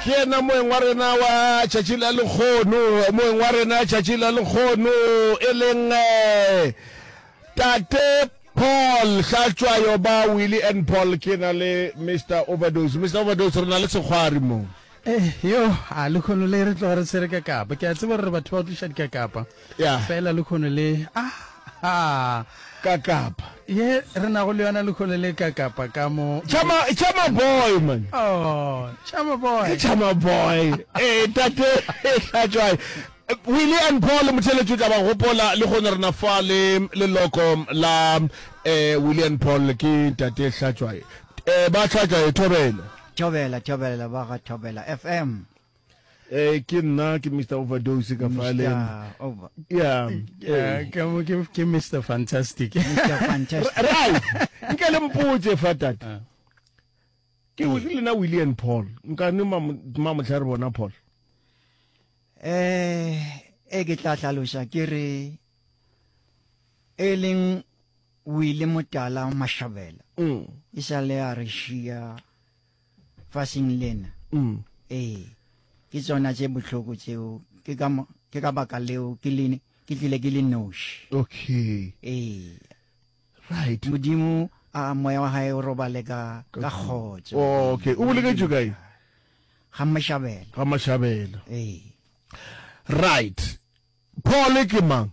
ke yena moeng wa rena wa tšatši la lekgono moeng wa rena tšatši la lekgono e leng eh, tate paul hlatswayo ba willy and paul ke na le mr overdose mr overdose re na le sekgwari moo Eh, yo a lekhono le re tloga re tshwere ka kapa ke a tseba gore batho ba tliša dikakapa Ya. Fela lekhono le, ahaa. Ka kapa. Ye re nago le yona lekhono le ka kapa ka mo. Chama, chama boy man. Oh, chama boy. Ke chama boy. Eh, tate, e hlatšwae. Willie and Paul Motheletši o tla ba gopola le gone rena fa le leloko la eh Willie and Paul ke tate Hlatšwae eh ba Hlatšwae Thobela Thobela Thobela ba ga Thobela FM Eh, ke nna ke mr overdose ka fale yeah eh, ke mo ke ke mr fantastic mr fantastic right nke le mpotse fa tata ah. ke o ke lena william paul nka ne ma mo tlhare bona paul eh e ke tla tlhalosa ke re e leng wile motala mashabela mm. e sa le a re shia fashing lena ee ke tšona tše bohloko tšeo ke ka ke ka baka leo ke le ke tlile ke le noši okay ee right modimo a moya wa hae o robale ka ka kgotso oh, okay o boleketšwe kae ga mashabela ga mashabela ee right Pole ke mang?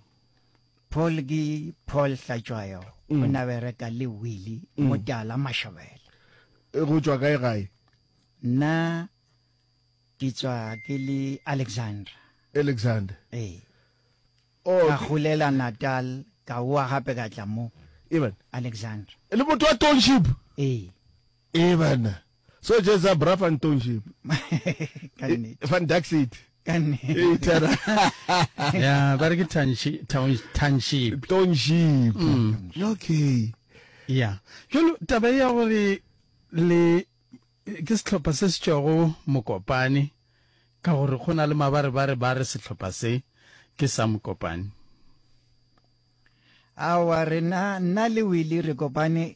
Pole ke Paul Hlatšwayo, o mm. na bereka le Willy mm. Motala Mashabela. E go tšwa kae gae? Nna ke tswa ke le Alexander. Alexander. Ee. Oh, ka golela Natal ka wa gape ka tla mo. Even. Alexander. E le motho wa township? Ee. Even. So just a bra fan township. Fan dark city. Itara. Yeah, but it's township. Township. Township. Mm. Okay. Yeah. Jolo taba ya gore le ke setlhopha se se tšwago mokopane ka gore go na le mabarebare ba re setlhopha se ke sa mokopane awa rena nna le wile re kopane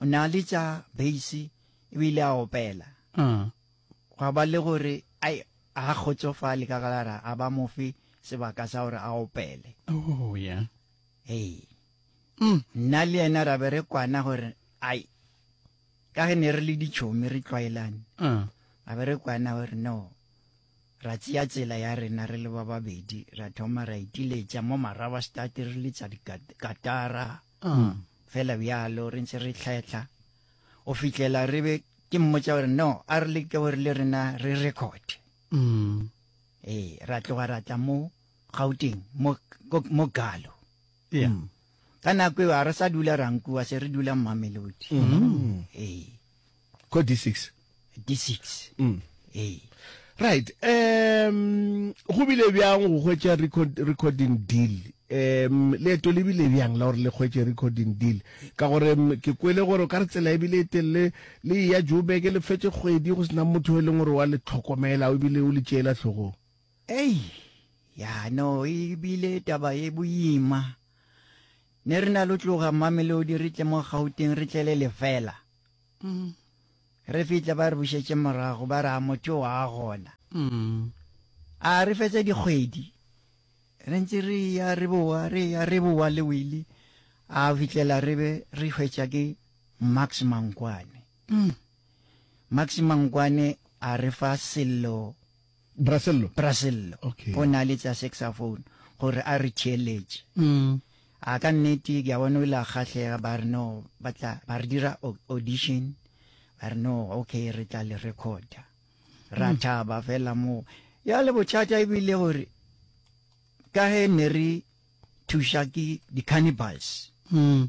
o ne a le tša beisi e bile a opela mm. gwa ba le gore ai a kgotsofale ka galara a ba mofe sebaka sa gore a opele oh, yeah. hey. mm. nna le yena ra be re kwana gore ai ka ge ne re le ditšhomi re tlwaelane mm. ra be re kwana gore no ra tseya tsela ya rena re le ba babedi ra thoma ra itiletša mo maraba state re letsa dikatara Umm, fela bjalo re ntse re tlhahla go fihlela re be ke mmotsa gore no a re leke gore le rena re record mm. ee ra tloga ra tla mo gauteng mo galo yeah. mm. ka nako eo ga re sa dula rankuwa se re dula mmamelodi mm. ee Ko D6. D6. Mm. Ee. Right. Um go bile bjang go hwetša record recording deal? Um leeto le bile bjang la gore le hwetše recording deal? Ka gore mm, ke kwele gore o ka re tsela e bile e telele le ya Joburg le fetše kgwedi go sena motho e leng gore wa le tlhokomela o bile o le tšeela tlhogong. Ei, ya no e bile taba e boima. Ne re na lo tloga Mamelodi re tle mo Gauteng re tlele lefela. Re fihla ba re bušetše morago ba re a motho o a gona. A re fetša dikgwedi re ntse re eya re bowa re eya re bowa le Willie a fihlela re be re hwetša ke Max Mankwane. Max Mankwane a re fa Sello Brasello. Brasello. Okay. O na le tsa saxophone gore a re theeletše. Mm. A ka nnete ke a bona o ile a kgahlega ba re no ba tla ba re dira audition ba re no okay re tla le recorda. Ra mm. thaba fela moo. Ya le bothata e bile gore ka he ne re thuša ke di-cannibals. Mm.